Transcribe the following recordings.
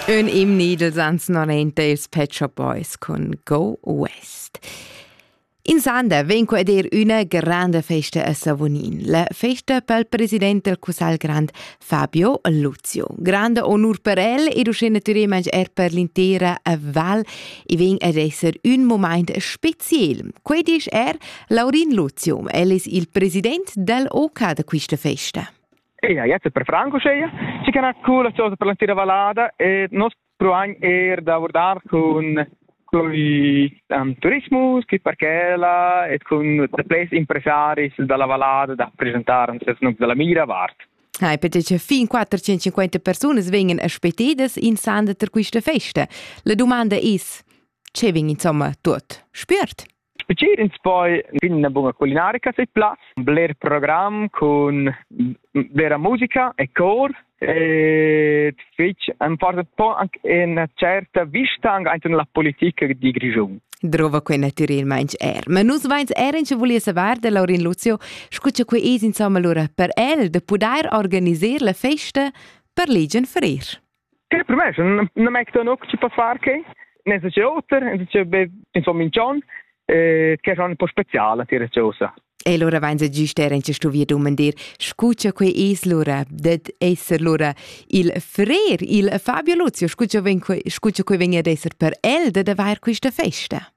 Ün imni dels ans 90 ils Pet Shop Boys cun Go West. In Sander vegn qua dir üna grande festa a Savonin, la festa pel president del Cussagl Grand Fabio Luzio. Grande onur per el ed uschè natüralment er per l'intera val e vegn ad esser ün moment speziel. Quei disch er Laurin Luzio, el es il president del OK da quista festa. Eia, jetzt per franco scheia. Ci can ha cool chosa per la tira valada e nos pruagn er da vurdar cun con um, turismus, chi parchela e con ples impresaris dalla valada da presentar un ses num dalla mira vart. Hai perché fin 450 persone vengono aspettidas in sanda per questa festa. La domanda è, ce vin insomma tot spürt? Specer ins poi fin una bunga culinarica se plas, bler program cun vera musica e cor e fich am porta po anche una certa vista anche la politica di Grischun. Drova quei naturalmente er. Ma nus veins er in volia savar de Laurin Lucio, scu che quei es insomma lura per el de pudair organiser la festa per legion ferir. Che per me non m'è ton oc ci per far che ne se c'è oter, ne se c'è insomma in John eh che è un po' speciale dire cosa. E allora vein se giust era in sto via dummen dir, scucha quei es lura, det esser lura il frer, il Fabio Luzio, scucha ven scucha quei ven ad esser per el, det avair questa festa.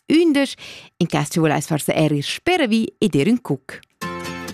Ündesch, in cas tu volais forsa er ir speravi ed ir ün cuc.